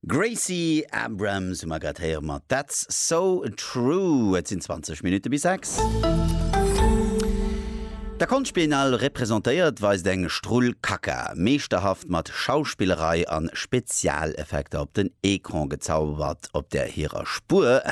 Gracie Abrams hu mer grad héiere mat That's So True. Et sinn 20 Minutte bis 6. Der Konschtbiennale representéiert weist eng Strull Kaka, meeschterhaft mat Schauspillerei an Spezialeffekter op den Ecran gezaubert, op der hirer Spuer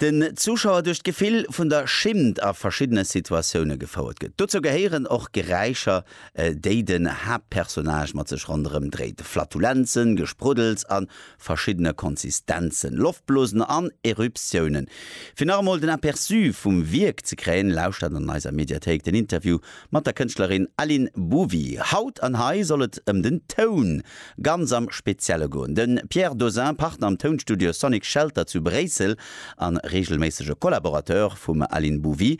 den Zuschauer duerch d'Gefill vun der Schimmt a verschiddene Situatioune gefouert gëtt. Dozou gehéieren och Geräischer, déi den Haaptpersonnage mat sech ronderëm dréit, Flatulenzen, Gespruddels a verschiddene Konsistenzen, Loftblosen an Eruptiounen. Fir nach emol den Aperçu vum Wierk ze kréien, lauschtert an eiser Mediathéik den Interview mat der Kënschtlerin Aline Bouvy. Haut an hei soll et ëm den Toun ganz am Spezielle goen. De Pierre Dozin, Partner am Tounstudio Sonic Shelter zu Bréissel a reegelméissege Collaborateur vum Aline Bouvy,